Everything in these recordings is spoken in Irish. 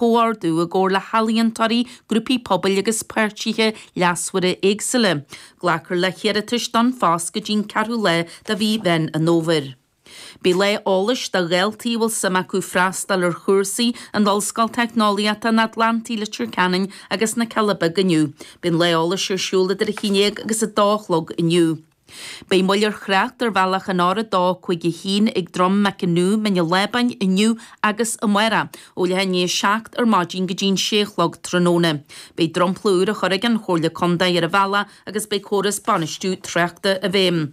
chomhordú i gcomhar le healaíontóirí, grúpaí pobail agus páirtithe leasmhara éagsúla. Glacfar le hiarratais don phost go dtí'n 4ú lá de mhí Mheán an Fhómhair. Beidh lá eolais do dhaltaí a bhfuil suim acu freastal ar chúrsaí in Ollscoil Teicneolaíochta an Atlantaigh Leitir Ceanainn agus na Cealla Beaga inniu. Beidh an lá eolais ar siúl idir a haon déag agus a dó a chlog inniu. Beidh moill ar thrácht ar bhealach an R dó cúig a haon ag Drom Mac an Nú, Mín an Lábáin, inniu agus amárach ó leath i ndiaidh 7 ar maidin go dtí'n 6 a chlog tráthnóna. Beidh dromchla úr á chur ag an Chomhairle Contae ar an bhealach agus beidh córas bainistiú tráchta i bhfeidhm.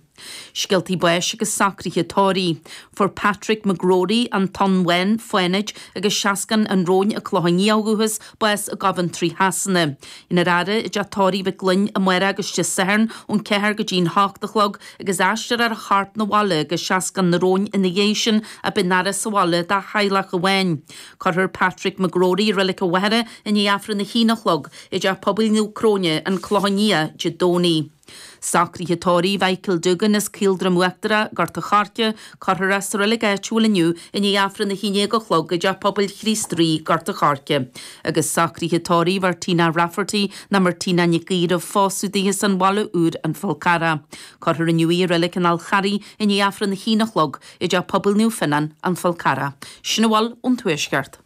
Scéaltaí báis agus socruithe tórraimh. Fuair Patrick McGrory, An Tóin Bhán, Fánaid agus Seascann an Róin, An Clochán Liath ó dhúchas Bás i gCoventry Shasana. Déanfar é a fhaire i dteach tórraimh Mhic Fhloinn amárach agus Dé Sathairn ón ceathair go dtí'n hocht a chlog agus aistreofar a chorp 'na bhaile go Seascann an Róin ina dhiaidh sin. Beidh an fhaire sa bhaile dá theaghlach amháin. Cuirfear Patrick McGrory i Reilig an Mhachaire i ndiaidh Aifreann a haon a chlog i dTeach Pobail Naomh Cróine, An Clochán Liath, Dé Domhnaigh. Socruithe tórraimh Mhichael Doogan as Caoldroim Uachtarach, Gort a' Choirce, cuirfear é sa reilig áitiúil inniu i ndiaidh Aifreann a hAon Déag a chlog i dTeach Pobail Chríost Rí, Gort a' Choirce. Agus socruithe tórraimh Mhartina Rafferty nó Martina Nic Aoidh roimh phósadh daoithe as an Bhaile Úr, An Fál Carrach. Cuirfear inniu í i reilig an Fháil Charraigh i ndiaidh Aifreann a hAon a chlog i dTeach Pobail Naomh Fionán, An Fál Carrach. Sin a bhfuil ón Tuaisceart.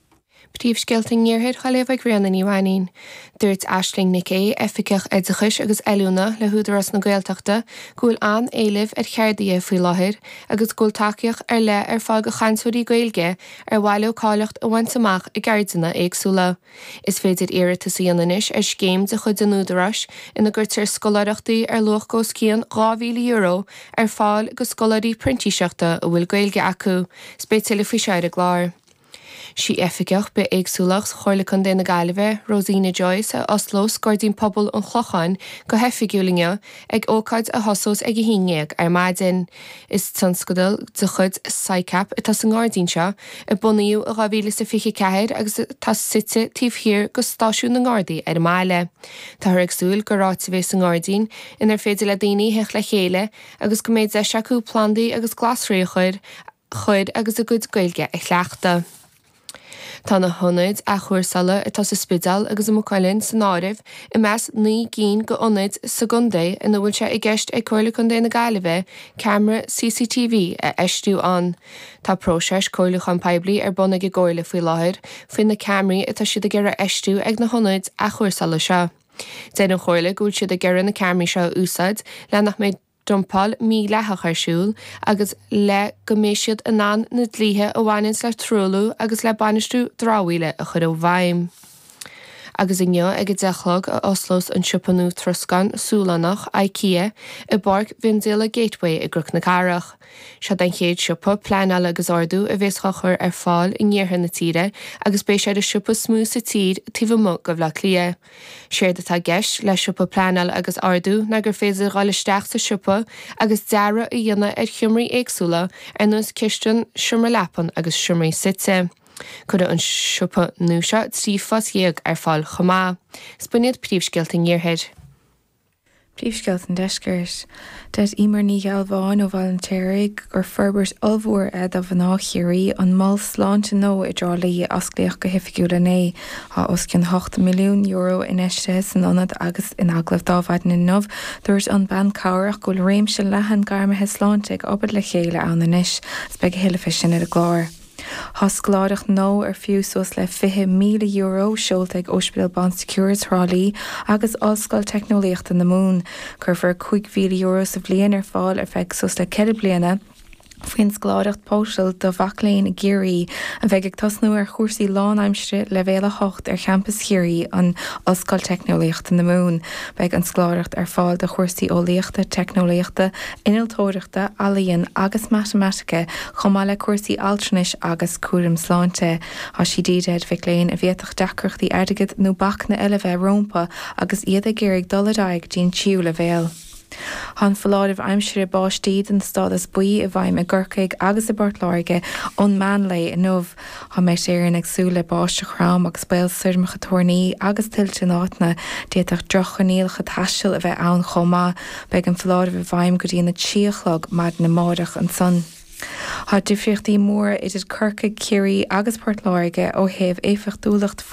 Príomhscéalta an Iarthair dhá léamh ag Ríona Ní Mhainín. Dúirt Aisling Nic Aoidh, Oifigeach Oideachais agus Oiliúna le hÚdarás na Gaeltachta, go bhfuil an-éileamh ar cheardaithe faoi láthair agus go bhfuil tacaíocht ar leith ar fáil do chainteoirí Gaeilge ar mhaith leo cáilíocht a bhaint amach i gceardanna éagsúla. Is féidir iarratas a dhéanamh anois ar scéim de chuid an Údaráis ina gcuirtear scoláireachtaí ar luach go os cionn €2,000 ar fáil go scoláirí printíseachta a bhfuil Gaeilge acu. Is beidh tuilleadh faoi seo ar an gclár. Sí Oifigeach Bith-éagsúlacht Chomhairle Contae na Gaillimhe, Rosina Joyce, a osclós Gairdín Pobail an Chlocháin go hoifigiúil inniu, ag ócáid a thosós ag 11:00 ar maidin. Is tionscadal de chuid Sicap atá sa ngairdín seo, a bunaíodh i 2024 agus atá suite taobh thiar go stáisiún na nGardaí ar an mbaile. Táthar ag súil gur áit a bheidh sa ngairdín inar féidir le daoine theacht le chéile agus go mbeidh deis acu plandaí agus glasraí a chur a chur agus a gcuid Gaeilge a chleachtadh. Tá na hionaid athchúrsála atá sa Spidéal agus i Maigh Cuilinn san áireamh i measc naoi gcinn d'ionaid sa gcontae ina bhfuil sé i gceist ag Comhairle Contae na Gaillimhe ceamara CCTV a fheistiú ann. Tá próiseas comhairliúcháin poiblí ar bun ag an gComhairle faoi láthair faoi na ceamaraí atá siad ag iarraidh a fheistiú ag na hionaid athchúrsála seo. Deir an Chomhairle go bhfuil siad ag iarraidh na ceamaraí seo a úsáid le nach mbeidh dumpáil mhídhleathach ar siúl agus le go mbeidh siad in ann na dlíthe a bhaineanns le truailliú agus le bainistiú dramhaíola a chur i bhfeidhm. Agus inniu ag a deich a chlog a osclós an siopa nua troscáin Sualannach, Ikea, i bPáirc mhiondíola Gateway i gCnoc na Cathrach. Seo'd an chéad siopa pleanála agus ordú a bhéas dhá chur ar fáil in iarthar na tíre agus beidh sé ar an siopa is mó sa tír taobh amuigh de Bhleá Cliath. Séard atá i gceist le siopa pleanáil agus ordú ná gur féidir dhul isteach sa siopa agus dearadh a dhéanamh ar sheomraí éagsúla ar nós cistin, seomra leapan agus seomraí suite. Cuirfidh an siopa nua seo trí phost dhéag ar fáil chomh maith. Is b'in iad Príomhscéalta an Iarthair. Príomhscéalta an Deiscirt. Dúirt Emer Ní Ghealbháin ó Bhaile an tSéaraigh gur forbairt ollmhór é do mhná Chiarraí an mol sláinte nua i dTrá Lí a osclaíodh go hoifigiúil inné. Tá os cionn €8 milliún infheistithe san ionad agus in agallamh ar maidin inniu dúirt an bhean chabhrach go bhfuil réimse leathan gairmithe sláinte ag obair le chéile ann anois agus beidh a thuilleadh fé sin ar an gclár. Tá scoláireacht nua ar fiú suas le €20,000 seolta ag Ospidéal Bon Secours Thrá Lí agus Ollscoil Teicneolaíochta na Mumhan. Cuirfear €5,000 sa bhliain ar fáil ar feadh suas le ceithre bliana faoin scoláireacht Póisil do mhic léinn i gCiarraí a bheidh ag tosnú ar chúrsaí lánaimsire leibhéal 8 ar champas Chiarraí an Ollscoil Teicneolaíochta na Mumhan. Beidh an scoláireacht ar fáil do chúrsaí Eolaíochta, Teicneolaíochta, Innealtóireachta, Ealaíon agus Matamaitice chomh maith le cúrsaí altranais agus cúraim sláinte. Thá sí dírithe ar mhic léinn a bhféadfadh deacrachtaí airgid nó bacanna eile bheith rómpa agus iad ag iarraidh dul ar aghaidh dtí'n tríú leibhéal. Thá an foláireamh aimsire báistí den stádas buí i bhfeidhm i gCorcaigh agus i bPort Láirge ón meán lae inniu. Tá Met Éireann ag súil le báisteach throm agus baol stoirmeacha toirní agus tuilte in áiteanna. D'fhéadfadh droch-choinníollacha taistil a bheith ann chomh maith. Beidh an foláireamh i bhfeidhm go dtí an 3 a chlog maidin amáireach ansan. Tá difríochtaí móra idir Corcaigh, Ciarraí agus Port Láirge ó thaobh éifeachtúlacht fuinnimh.